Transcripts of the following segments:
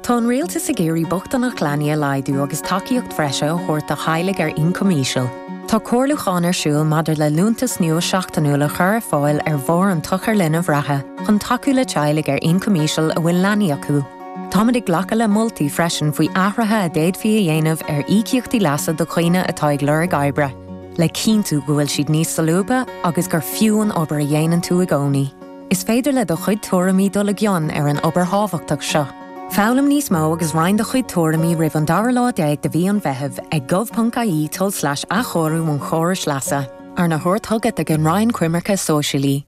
Tá an rialtas ag iarraidh bochtaineacht leanaí a laghdú agus tacaíocht bhreise a thabhairt do theaghlaigh ar ioncam íseal. Tá comhairliúchán ar siúl maidir le liúntas nua seachtainiúil a chur ar fáil ar bharr an tsochair linbh reatha chun tacú le teaghlaigh ar ioncam íseal a bhfuil leanaí acu. Táimid ag glacadh le moltaí freisin faoi athruithe a d'fhéadfaí a dhéanamh ar íocaíochtaí leasa do dhaoine atá ag lorg oibre, le cinntiú go bhfuil siad níos solúbtha agus gur fiú an obair a dhéanann tú i gcónaí. Is féidir le do chuid tuairimí dul i gcion ar an obair thábhachtach seo. Foghlaim níos mó agus roinn do chuid tuairimí roimh an dara lá déag de mhí an Mheithimh ag gov.ie tulslais athchóiriú an chórais leasa. Arna thabhairt chugat ag an Roinn Coimirce Sóisialaí.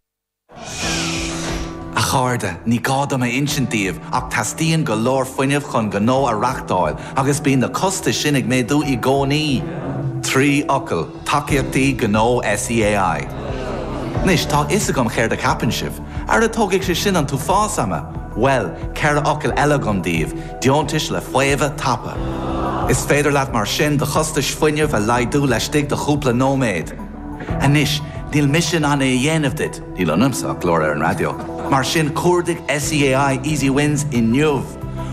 A chairde, ní gá dom a insint daoibh ach teastaíonn go leor fuinnimh chun gnó a reachtáil agus bíonn na costais sin ag méadú i gcónaí. Trí fhocal. Tacaíochtaí Gnó SEAI. Anois, tá a fhios agam céard a cheapann sibh. Ara tógfaidh sé sin an t-uafás ama! Bhuel, ceithre fhocal eile agam daoibh, deontais le faomhadh tapa. Is féidir leat mar sin do chostais fuinnimh a laghdú laistigh de chúpla nóiméad. Anois, níl mise in ann é a dhéanamh duit, níl ionamsa ach glór ar an raidió, mar sin cuardaigh SEAI Easy Wins inniu!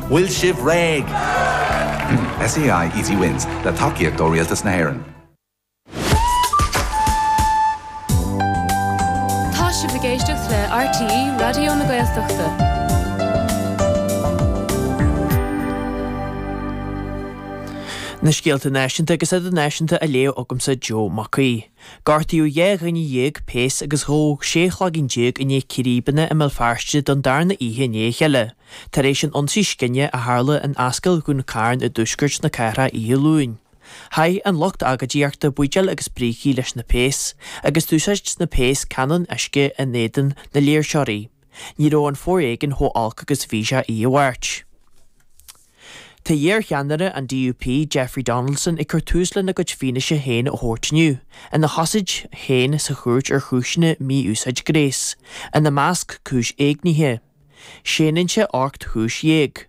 Bhfuil sibh réidh? SEAI Easy Wins, le tacaíocht ó Rialtas na hÉireann. Tá sibh ag éisteacht le RTÉ Raidió na Gaeltachta. Na scéalta náisiúnta agus idirnáisiúnta á léamh agamsa Joe Mac Aoidh. Gortaíodh dháréag péas agus tógadh sé chloigeann déag i ndiaidh círéibeanna i mBéal Feirste don darna oíche i ndiaidh a chéile, tar éis an ionsaí scine a tharla in Ascaill Dhún Cairn i dtuaisceart na cathrach oíche Luain. Chaith an lucht agóidíochta buidéil agus brící leis na péas, agus d'úsáid na péas canóin uisce in éadan na léirseoirí. Ní raibh an foréigean chomh olc agus a bhí sé oíche Mháirt. Tá iar-cheannaire an DUP, Jeffrey Donaldson, ag cur tús lena chuid fianaise féin a thabhairt inniu, ina chosaint féin sa chúirt ar chúiseanna mí-úsáid gnéis, ina measc cúis éignithe. Séanann sé ocht gcúis dhéag.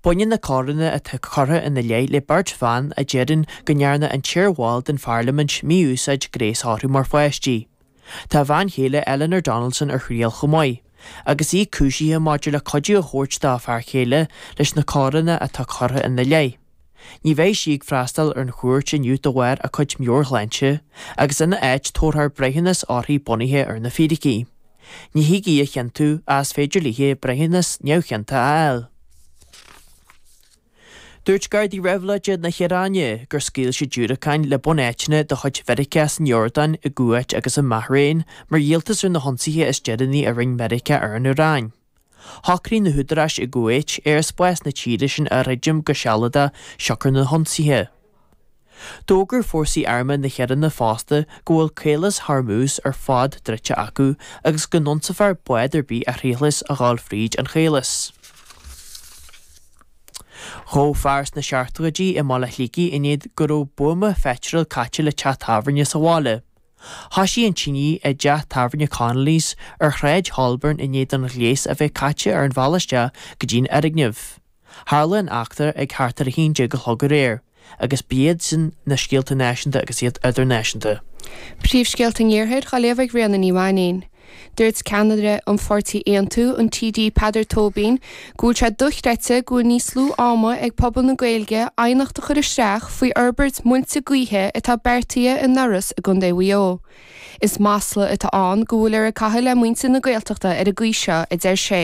Baineann na coireanna atá curtha ina leith le beirt bhan a deireann go ndearna an t-iar-bhall den pharlaimint mí-úsáid gnéis orthu mar pháistí. Tá a bhean chéile Eleanor Donaldson ar thriail chomh maith, agus í cúisithe maidir le cuidiú a thabhairt dá fear céile leis na coireanna atá curtha ina leith. Ní bheidh sí ag freastal ar an chúirt inniu de bharr a cuid meabhairshláinte agus ina áit tabharfar breithiúnas uirthi bunaithe ar na fíricí. Ní thig í a chiontú ach is féidir léi breithiúnas neamhchiontach a fháil. Dúirt Gardaí Reibhlóide na hIaráine gur scaoil siad diúracáin le bunáiteanna de chuid Mheiriceá san Iordáin, i gCuáit agus i mBahrain mar dhíoltas ar na hionsaithe is deireanaí a rinne Meiriceá ar an Iaráin. Shocraigh na húdaráis i gCuáit aerspás na tíre sin a dhruidim go sealadach siocair na n-ionsaithe. D'fhógair fórsaí armtha na hIaráine fosta go bhfuil Caolas Hormuz ar fad druidte acu agus go n-ionsófar bád ar bith a thriailfeas a ghabháil fríd an Chaolas. Gabhadh fear sna seachtóidí i mBaile Shligigh i ndiaidh go raibh buama pheitril caite le teach tábhairne sa bhaile. Thosaigh an tine i dteach tábhairne Connolly's ar Shráid Holborn i ndiaidh don ghléas a bheith caite ar an bhealach isteach go dtí an fhoirgneamh. Tharla an eachtra ag thart ar 11 a chlog aréir agus ba iad sin na scéalta náisiúnta agus iad idirnáisiúnta. Príomhscéalta an Iarthair á léamh ag Ríona Ní Mhainín. Dúirt ceannaire an pháirtí Aontú, an TD Peadar Tóibín, go bhfuil sé dochreidte go bhfuil níos lú ama ag pobal na Gaeilge aighneacht a chur isteach faoi fhorbairt muilte gaoithe atá beartaithe in Iorras i gContae Mhaigh Eo. Is masla atá ann go bhfuiltear ag caitheamh le muintir na Gaeltachta ar an gcaoi seo, a deir sé.